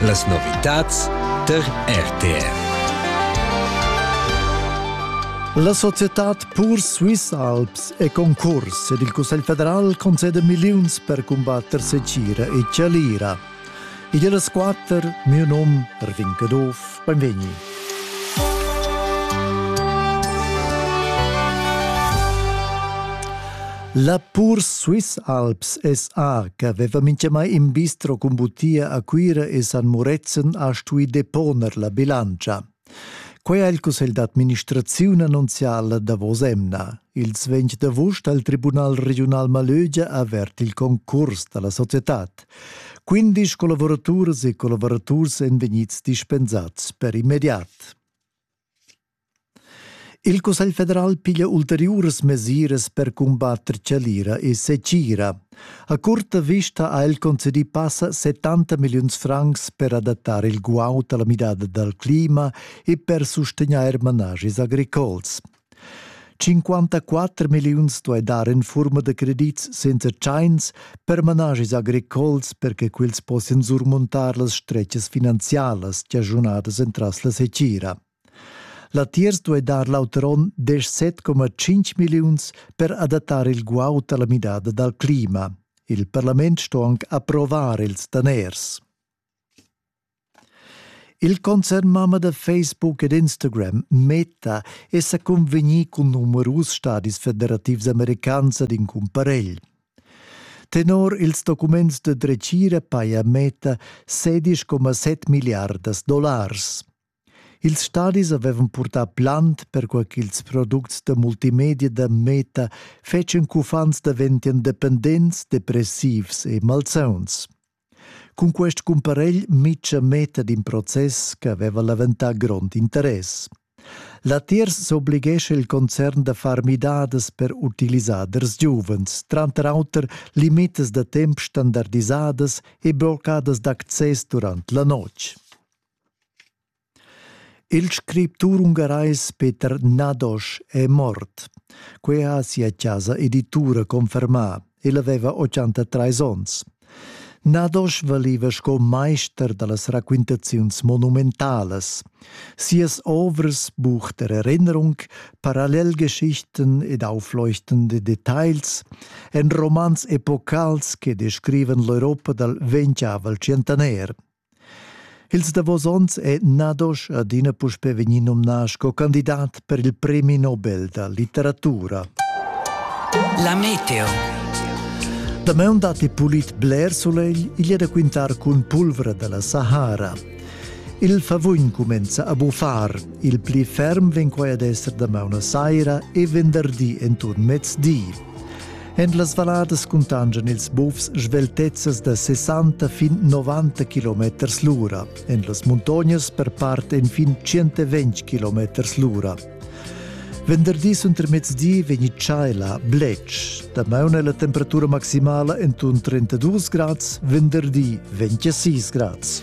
Las novitads tar RTR. La societad Pur Swiss Alps è concurs ed il Cussegl federal concede milliuns per cumbatter secira e chalira. Igl è las quatter, miu num, Erwin Caduff, Beinvegni. La pur Swiss Alps SA che aveva mintgamai in bistro cun butia a Cuira e San Murezzan ha stui deponer la bilantscha. Quei ha il cussegl d'administraziun annunzial la davos emna. Ils 20 d'avust ha il Tribunal regiunal Malögia avert il concurs dalla societad. Quindisch collavuraturas e collavuraturs èn vegnids dispensads per immediat. Il Cussegl federal piglia ulteriuras mesiras per cumbatter chalira e secira. A curta vista ha el concedì passa 70 milliuns francs per adattare il guaud alla midada dal clima e per sustegnair managis agricols. 54 milliuns duai dar en furma da credits senza tschains per manaschis agricols per che quels possian surmuntar las stretgas finanzialas chaschunadas entras la secira. Latiers duai dar l'auter onn 17,5 milliuns per adattar il guaud alla midada dal clima. Il parlament sto anc approvar ils daners. Il concernmama da Facebook ed Instagram Meta è sa convegnì cun numerus stadis federativs americans ad in cumparegl. Tenor ils documents da dretgira paja Meta 16,7 milliardas dollars. Ils stadis avevan purtà plant per quai ch'ils products da multimedia da Meta fetschen ch'uffants daventian dependents, depressivs e malsauns. Cun quest cumparegl Mitcha metta d'in process che aveva leventà grond interess. Latiers s'oblighescha il concern da far midadas per utilisaders giuvens, tranter auter limitas da temp standardisadas e bloccadas d'access durant la notg. Il scriptur ungarais Peter Nadosch è mort. Quei ha sia casa editura confermà. El aveva 83 onns. Nadosch valiva sco meister dallas raquintaziuns monumentalas. Sias ovras bucht der Erinnerung, Parallelgeschichten ed aufleuchtende Details en romans epocals che descrivan l'Europa dal ventgavel tschientaner. Ils davos onns è Nadosch adina puspè vegnì nomnà sco candidat per il Premi Nobel da litteratura. La meteo. Damaun datti pulit bler sulegl, igl è da quintar cun pulvra da la Sahara. Il favugn cumenza a buffar. Il pli ferm vegn quai ad esser damaun a saira e venderdi enturn mezdi. En las valladas cuntangian ils bufs sveltezzas da 60 fin 90 km l'ura. En las muntognas per part enfin 120 km l'ura. Venderdi untermezdi vegni tschaila blec. Damaun è la temperatura maximala en 32 grads, venderdi 26 grads.